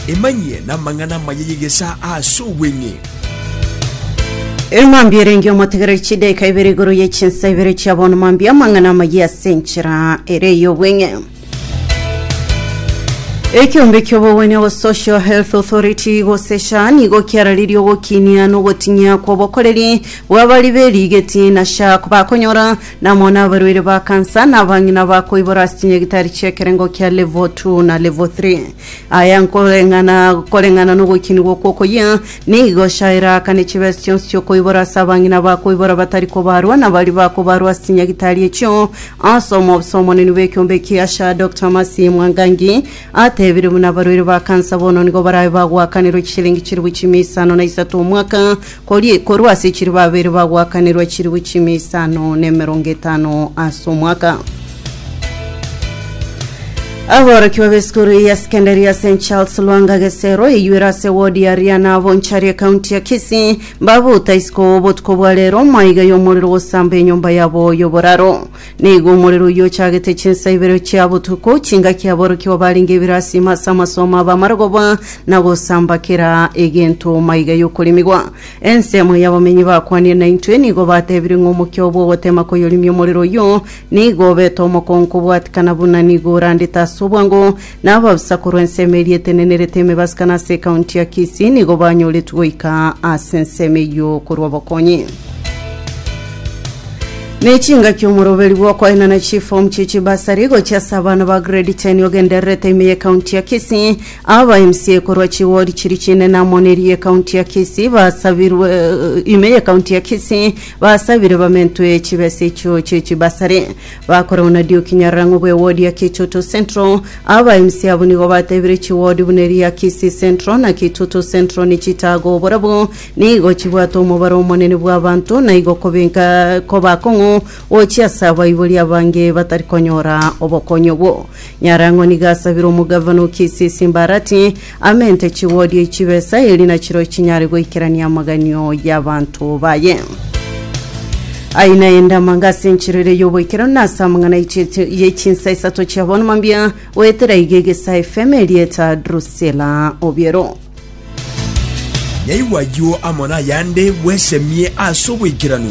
Emanyie namang'ana amaya y'egesaa ase obweng'e. Ere mambia erenge omotegereri chidaika ibere igoro ye chinsa ibere chia bono mambia amang'ana amayia ase enchera ere y'obweng'e. Ekiombe ki'obogwenia go Social Health Authority gose SHA nigo kiararirie ogokinia na ogoting'ia kw'obokoreri bw'abari berigeti na SHA bakonyora Namo nabarwaire ba kansa, na abang'ina ba koibora ase chinyagitari chi'ekerengo kia Level 2 na Level 3. Aya nkoreng'ana koreng'ana nogoikinigwa okwo okoyia, nigo chiairaakane chibesa chionsi chi'okoibora ase abang'ina ba koibora batari kobaarwa, na baria bakobaarwa ase chinyagitari echio. Ase omobisa omonene bw'ekiombe ekiacha, Doctor Mercy Mwangangi atebire buna abarwaire ba kansa bono nigo barabe bagoakanirwa chishilingi chilifu chimia isano na isato omwaka, Kori, korwa ase chiribu abere bagoakanerwa chiribu chimia isano na emerongo etano ase omwaka. Aborokiwa b'esukuru ya sekendari ya St Charles Lwanga Gesero eyuere ase wodi ya Riana Bonchari ekaunti ya Kisii babuta isiko obotuko bwa rero maiga y'omorero gosamba enyomba yabo y'oboraro. Nigo omorero oyio ochagete chinsa ibere chia botuko, chingaki aborokigwa barenge ebirasima ase amasomo aba amarogoba, na gosamba kera egento maiga y'okorimigwa. Ensemo y'abamenyi bakwanire naintwe nigo batebire ng'a omokia oo bw'ogotema koyorimia omorero oyio nigo obete omokongo kobwatikana buna nigo orandete ase obwango, na ababisa korwa ensemo eria etenenerete emebasika na ase ekaunti ya Kisii nigo banyoretwe goika ase ensemo eyio korwa obokonyi. Ne chingaki omoroberi bw'okoenana chifomu chie chibasari gochia ase abana ba grade 10 ogendererete ime y'ekaunti ya Kisii. Aba MCA korwa chiwodi chiri chinene amo ne eria y'ekaunti ya Kisii basabirwe ime y'ekaunti ya Kisii basabire bamentwe chibesa echio chie chibasari. Bakoragwa na Dioki Nyarang'o bw'ewodi ya Kitoto Central. Aba MC abwo nigo batebire chiwodi buna eri ya Kisii Central na Kitoto Central nichitagwo barabwo nigo chibwate omobaro omonene bw'abanto na igo kobenka koba akong'u gochia ase abaibori abange batari konyora obokonyi obwo. Nyarang'o nigo asabire omogavana o Kisii Simbarati Amente chigodio chibesa eri nachiro chinyare goikerania amaganio y'abanto baye. Aye naende amanga ase enchera ere y'oboikeranu na ase amang'ana y'echinsa isato chia bono mambia goetera iga egesa FM erieta Drusilla Obiero. Nyaigwa ayio amo nayande bwesemie ase oboikeranu.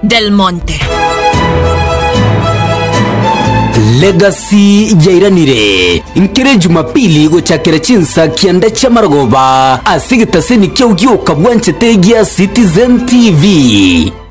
Del Monte. Legacy yairanire nkere Jumapili gochakera chinsa kianda chia marogoba ase egetaseni kia Ogioka Bwanchete gia Citizen TV.